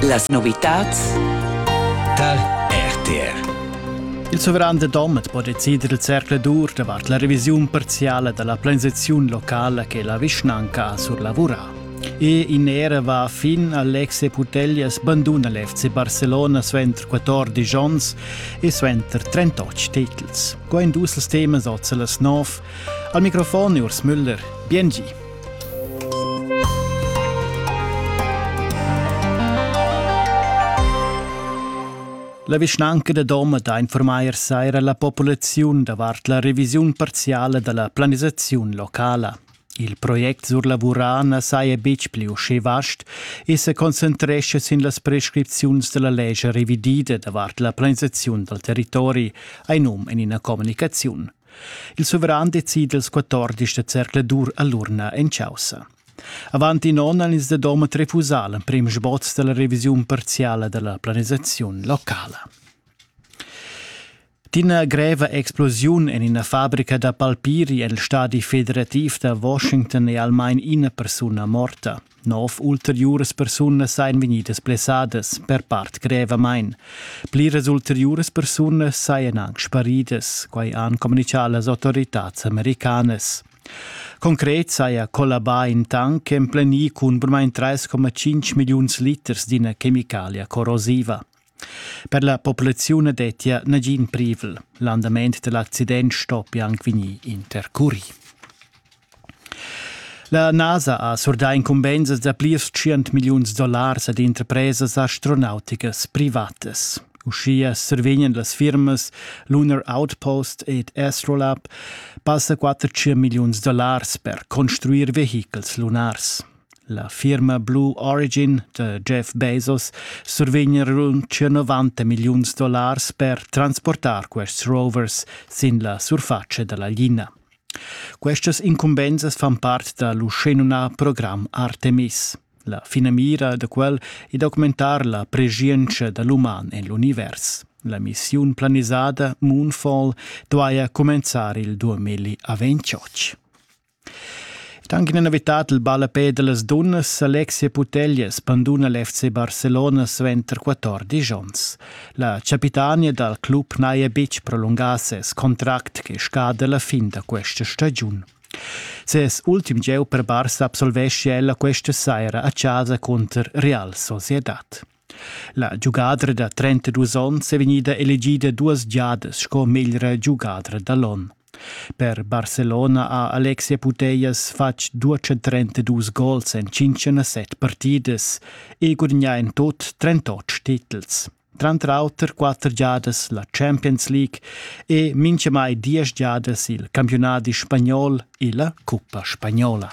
Las novitads tar RTR. Il suveran de Domet po decider il cercle dur davart la revisiun parziale della planisazione locale che la vischnanca ha sur lavura. E in era va fin Alexe Putellas banduna l'FC Barcelona suenter 14 onns e suenter 38 titels. Go in dus temas oz las 9. Al microfon Urs Müller. Biengi. La vischnanca da Doma da informair saira la populaziun davart la revisiun parziala da la planisaziun locala. Il project sur lavurà na saja betg pli uschè vast e sa concentrescha sin las prescripziuns da la lescha revidida davart la planisaziun dal territori, hai num en ina communicaziun. Il suveran decida ils 14 da zercladur a l'urna en chaussa. Avant in onn han ins da Domat refusà l'emprim sboz da la revisiun parziala da la planisaziun locala. D'ina greva explosiun en ina fabrica da palpiri en il stadi federativ da Washington è almain ina persuna morta. Nov ulteriuras persunas ein vegnidas blessadas, per part grevamein. Pliras ulteriuras persunas seien anc sparidas, quei han communicau las autoritads americanas. Concret saja collabà in tank emplenì cun burmain 3,5 milliuns liters d'ina chemicalia corrosiva. Per la populaziun dettia nagin privel. L'andament da l'accident stoppia anc vegnir intercurì. La NASA ha surdà incumbensas da plirs tschient milliuns dollars ad interpresas astronauticas privatas. Uschia survegnan las firmas Lunar Outpost ed Astrolab passa 400 milliuns dollars per construir vehichels lunars. La firma Blue Origin da Jeff Bezos survegn rund 90 milliuns dollars per transportar quests rovers sin la surfatscha da la lina. Questas incumbensas fan part da l'uschenumnà program Artemis. La finamira da quel è d'augmentar la preschientscha da l'uman en l'univers. La missiun planisada Moonfall duaja cumenzar il 2028. Ed anche in novità il ballapè dellas dunnas Alexia Putellas banduna l'FC Barcelona suenter 14 onns. La capitania dal club n'haja betg prolungà ses contract che scada la fin da questa stagiun. Ses ultim gieu per Barça absolvescia ella questa saira a casa cunter Real Sociedad. La giugadra da 32 onns è vegnida elegida duas giadas sco meglra giugadra da l'onn. Per Barcelona ha Alexia Putellas fatg 232 gols en 57 partidas e gudagnà en tut 38 titels. Tranter auter quatter giadas la Champions League e mintgamai diesch giadas il campiunadi spagnol e la cuppa spagnola.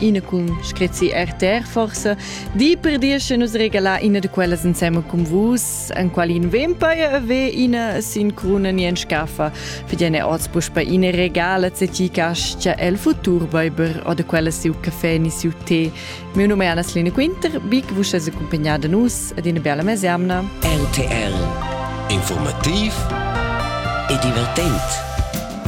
Ina cun screzi RTR forsa, di per dir che nus regalar ina da quellas insema cun vus, en quali in vempire ave ina sin cruna ni en scaffa, fidene otzbusch bei ina regala se ti cascia el futur weiber oder quella siu caffè ni siu tè. Mio nome è Anna-Selina Quinter, vi che vos es accompagnata da nus ad una bella mesiamna. RTR Informativ e divertent.